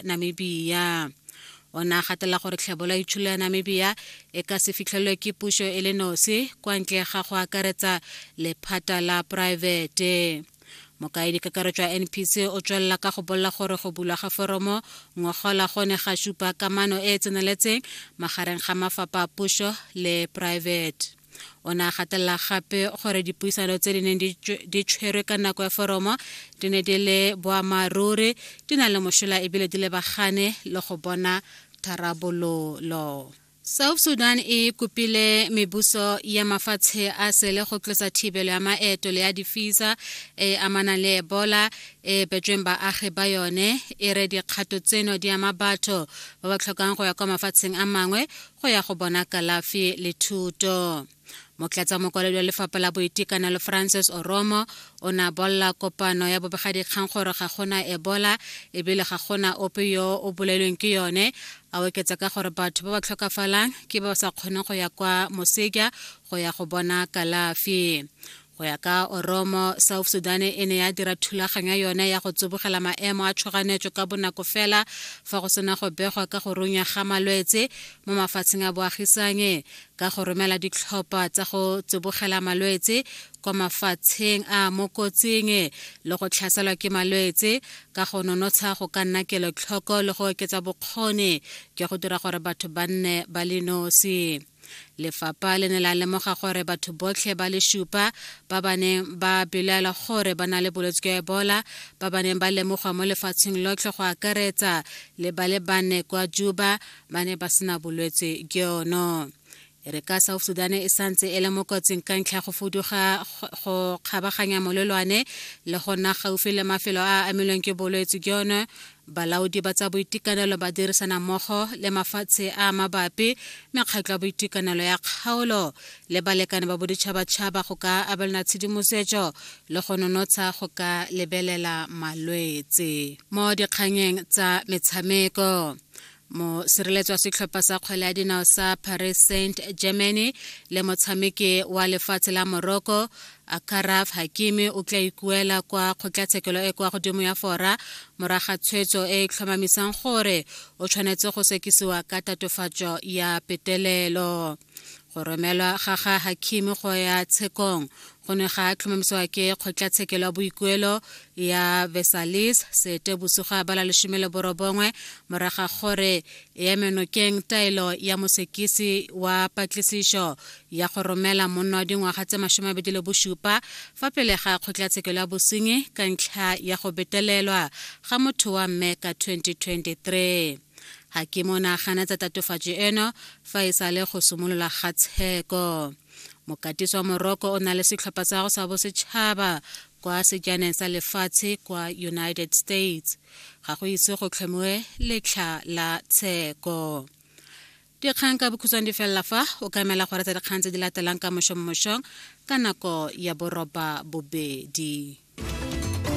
namibia o ne a gatela gore tlhebola itsholo ya namibia e ka se fitlhelwe ke puso e le nosi kwa ntle ga go akaretsa lephata la poraefete mokaedi kakaretso ya npc o tswelela ka go bolela gore go bulwa ga foromo ngogola go ne ga supa kamano e e tseneletseng magareng ga mafapha a puso le poraefete o ne a gatelela gape gore dipuisano tse di neng di tshwerwe ka nako ya foromo di ne di le boammaaruri di na le mošola ebile di lebagane le go bona tharabololo south sudan e kopile mebuso ya mafatshe a sele go tlosa thibelo ya maeto le ya difisa e amanang le ebola e betsweng baagi ba yone e re dikgato tseno di ama batho ba ba tlhokang go ya kwa mafatsheng a mangwe go ya go bona kalafi le thuto motlatsa mokwaledi wa lefapha la boitekanelo francis oromo o ne a bolela kopano ya bobegadikgang gore ga gona ebola ebile ga gona ope yo o bolailweng ke yone a oketsa ka gore batho ba ba tlhokafalang ke ba ba sa kgoneng go ya kwa moseja go ya go bona kalafi go ya ka oromo south sudan e ne ya dira thulaganyo yone ya go tsibogela maemo a tshoganyetso ka bonako fela fa go sena go begwa ka go runya ga malwetse mo mafatsheng a boagisanye ka go romela ditlhopha tsa go tsibogela malwetse kwa mafatsheng a mo kotsing le go tlhaselwa ke malwetse ka go nonotsha go ka nna kelotlhoko le go oketsa bokgoni jwa go dira gore batho ba nne ba le nosi lefapha le ne la lemoga gore batho botlhe ba le supa ba ba neng ba belaela gore ba na le bolwetse jwa ebola ba ba neng ba lemogwa mo lefatsheng lotlhe go akaretsa le ba le bane kwa juba ba ne ba sena bolwetse jono e re ka south sudan e santse e le mo kotsing ka ntlha go fuduga go kgabaganya molelwane le go nna gaufi le mafelo a a amilweng ke bolwetse jono Balaodi ba tsa boitekanelo ba dirisana mmogo le mafatshe a a mabapi, mekgatlho ya boitekanelo ya kgaolo le balekane ba boditšhabatšhaba go ka abelana tshedimosetso le go nonotsha go ka lebelela malwetse mo dikganyeng tsa metshameko. mosireletswa setlhopha sa kgwele ya dinao sa paris saint germany le motshameki wa lefatshe la morocco akaraf hakimi o tla ikuela kwa kgotlatshekelo e kwa godimo ya fora moraga tshwetso e e tlhomamisang gore o tshwanetse go sekisiwa ka tatofatso ya petelelo go romelwa ga ga hakim go ya tshekong go ne ga tlhomamisiwa ke kgotlatshekelo ya boikuelo ya vesalis sete bosigo ya bala lesome le borobongwe moraga gore e emenokeng taelo ya mosekisi wa patlisišo ya go romela monna wa dingwaga tse masome abedi le bosupa fa pele ga kgotlatshekelo ya bosenyi ka ntlha ya go betelelwa ga motho wa mme ka 2023 ga ke mo nagana tsa tatofatso eno fa e sale go simolola ga tsheko mokatisi wa moroko o na le setlhopha sa go sa bosetšhaba kwa sejaneng sa lefatshe kwa united states ga go ise go tlhomiwe letlha la tsheko dikgang ka bokhutshwane di felela fa o ka emela gore tsa dikgang tse di latelang ka mošommošong ka nako ya boroba bobedi